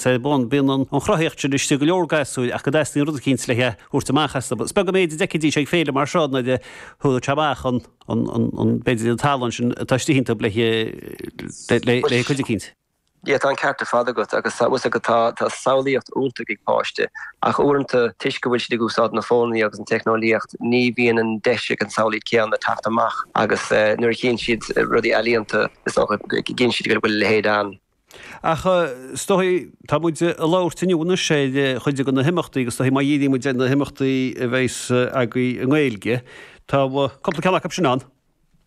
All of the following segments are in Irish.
Tá, bíonn an chruthaíocht sin istigh i go leor gasúir ach go dteastaíonn rud eicínt le thabhairt amach astu. Is beag an méid a d'fheicfidís ag féile mar seo nuair a thabharfadh sé amach an, b'fhéidir, an tallann sin atá istigh iontu le cuid a chaint. Tá an ceart ar fad agat agus tá fhios agat tá samhlaíocht iontach ag páiste ach uaireanta toisc go bhfuil siad ag úsáid na fóin agus an teicneolaíocht ní bhíonn an deis ag an samhlaíocht céanna teacht amach agus nuair a chíonn siad rudaí ealaíonta is dócha go gcíonn siad go bhfuil a leithéid ann. Ach, is dóichí, tá muid ag labhairt inniu anois ar chuid de na himeachtaí agus is dóichí má dhíríonn muid ar na himeachtaí a bheidheas agaibh i nGaeilge, tá cúpla ceann acu sin ann.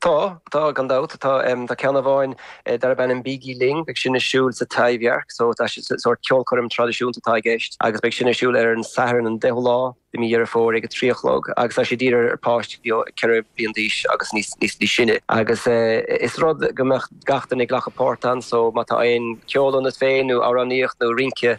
Tá, tá, gan dabht. Tá ceann amháin darb ainm Bígí Linn, beidh sin ar siúl sa Taibhdhearc, so tá sórt ceolchoirm traidisiúnta atá i gceist, agus beidh sin ar siúl ar an Satharn an 10ú lá i mí Dheireadh Fómhair ag a trí a chlog agus tá sé dírithe ar pháistí ó 4 bliain d'aois agus níos sine agus is rud go mbeadh gach duine ag glacadh páirt ann so má tá aon ceol ionat féin nó amhránaíocht nó rince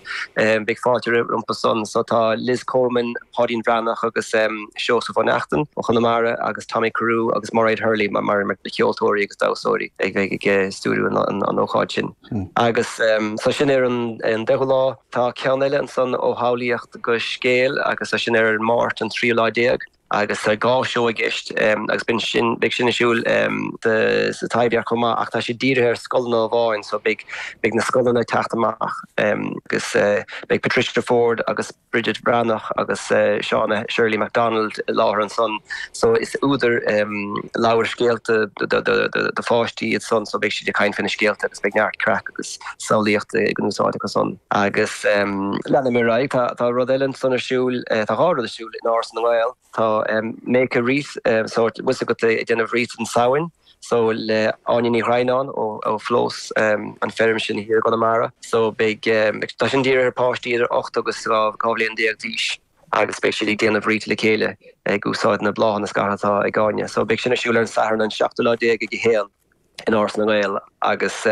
beidh fáilte rompu san so tá Liz Coleman, Páidín Breathnach agus Seosamh Ó Neachtain ó Chonamara agus Tommy Carew agus Mairéad Hurley mar na ceoltóirí agus damhsóirí ag bheidh ag stiúiriú an ócáid sin. Agus tá sin ar an 10ú lá. Tá ceann eile ansan ó shamhlaíocht go scéal agus tá sin ar an Máirt an 13 lá. Agus tá dhá seó i gceist agus beidh sin ar siúl sa Taibhdhearc chomh maith ach tá siad dírithe ar scoileanna amháin so beidh na scoileanna ag teacht amach agus beidh Patricia Forde agus. Bridget Bhreathnach agus Shauna Shirley Macdonald i láthair ansan so is údair leabhair scéalta do pháistí iad san so beidh siad ag caint faoi na scéalta agus beidh neart craic agus samhlaíocht ag úsáid acu san agus leanfaidh mé ar aghaidh tá rud eile ansan ar siúl tá dhá rud ar siúl in Áras na nGael tá Make a Wreath sórt bhfuil 's agat ag déanamh wreath don Samhain. So le Áine Ní Dhroighneáin ó Phlós an Feirm sin thiar i gConamara. So beidh, tá sin dírithe ar páistí idir ocht agus dhá bhliain déag d'aois agus beidh siad ag déanamh wreath le chéile ag úsáid na bláthanna scartha atá ag Áine. So beidh sin ar siúl ar an Satharn an seachtú lá déag ag a haon déag in Áras na nGael. agus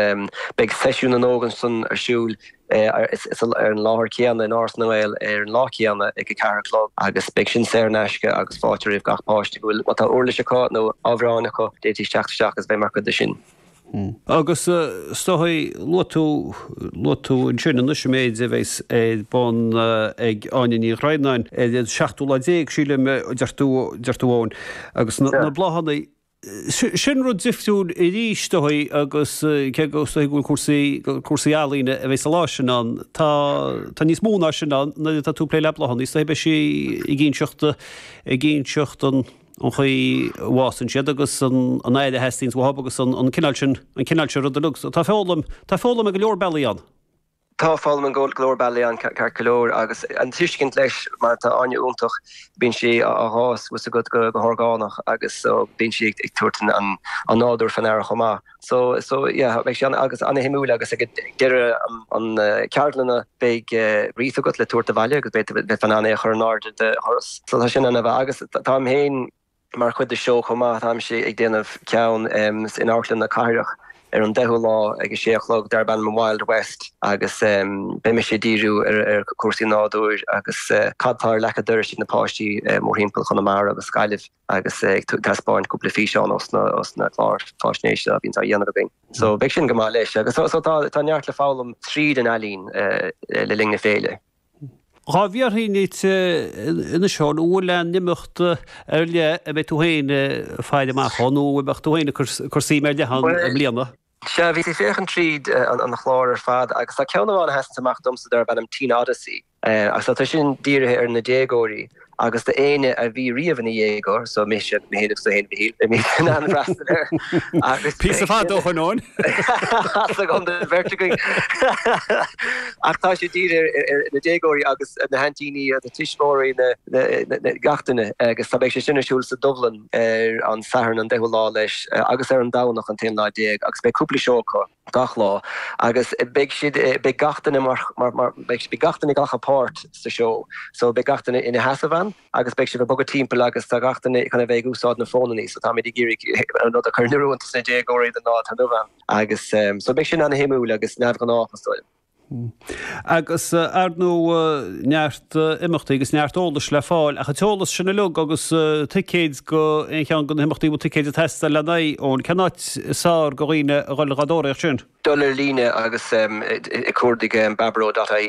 beidh Seisiún na nÓg ansan ar siúl ar an láthair chéanna in Áras na nGael ar an lá céanna ag a ceathair a chlog agus beidh sin saor in aisce agus fáilte roimh gach páiste go bhfuil, má tá uirlis acu nó amhráin acu, d'fhéadfaidís teacht isteach agus bheith mar chuid de sin. Agus is dóichí, luaigh tú ansin anois an méid a bheidheas ar bun ag Áine Ní Dhroighneáin ar an seachtú lá déag, sílim, a deir tú, Eoin, agus na bláthanna. Sin rud difriúil arís is dóichí agus cé go is dóichí go bhfuil cúrsaí, cúrsaí ealaíne a bheidh sa lá sin ann, tá, tá níos mó ná sin ann, nuair atá tú ag plé le bláthanna, is dóichí beidh sí ag inseacht, ag inseacht an chaoi a bhfásann siad agus an an aire a theastaíonns uathub agus an cineál sin, an cineál sin ruda. Tá foghlaim, tá foghlaim ar go leor bealaí ann. Tá foghlaim go leor bealaí ann ceart go leor agus an tuiscint leis mar tá Áine iontach, bíonn sí ag fás a fhios agat go horgánach agus so bíonn sí ag tabhairt an nádúr faoi ndeara chomh maith. So so yeah beidh sé agus an-shuimiúil agus ag deireadh an ceardlanna beidh wreath agat le tabhairt abhaile agus beidh tú in ann é a chur in airde do dhoras. So tá sin ann agus táim féin, Mar chuid de seo chomh maith, táimse ag déanamh ceann in Amharclann na Cathrach ar an 10ú lá ag a sé a chlog darb ainm 'Wild West' agus beidh mise ag díriú ar chúrsaí nádúir agus cad tá ar leac a' dorais ag na páistí mórthimpeall Chonamara agus Gaillimh agus ag taispeáint cúpla físeán ós na cláir fáisnéise a bhíonns á dhéanamh againn. So beidh sin go maith leis so tá neart le foghlaim tríd an ealaín le linn na féile. Tá mé ag fiafraí anois Eoin, an bhfuil aon imeacht ar leith a mbeadh tú féin ag faire amach dhó nó a mbeadh tú féin ag cur suim ar leith ann i mbliana? Sea, bhíos ag féachaint tríd an chlár ar fad agus tá ceann amháin a sheasanns amach domsa darb ainm Teen Odyssey agus tá sé sin dírithe ar na déagóirí agus do éinne a bhí riamh ina dhéagóir, so mise agus tú féin agus tú féin a Mhichíl, a mbíonn an an freastal air, agus. Píosa fada ó shin! As agam do bheirt againn. Ach tá sé dírithe ar ar na déagóirí agus na haintíní agus na tuismitheoirí na na na gach duine agus tá beidh sé sin ar siúl sa Dubhlann ar an Satharn an deichiú lá leis agus ar an Domhnach an t-aonú lá déag agus beidh cúpla seó acu. gach lá agus beidh siad, beidh gach duine mar, mar, mar, beidh, beidh gach duine ag glacadh páirt sa seó so beidh gach duine ina sheasamh ann agus beidh siad ag bogadh timpeall agus tá gach duine chun a bheith ag úsáid na fónannaí so táimid ag iarraidh an rud a chur in oiriúint do na déagóirí don lá atá inniu ann agus so beidh sin an-shuimiúil agus neamhghnách is dóigh liom. Agus, ar ndóigh, neart imeachtaí agus neart eolais le fáil ach an t-eolas sin uilig agus ticéid go aon cheann de na himeachtaí a bhfuil ticéid ag teastáil lena n-aghaidh, Eoin, cén áit is fearr do dhaoine a dhul ag tóraíocht sin? Dul ar líne agus ag cuardach baboró dot ie.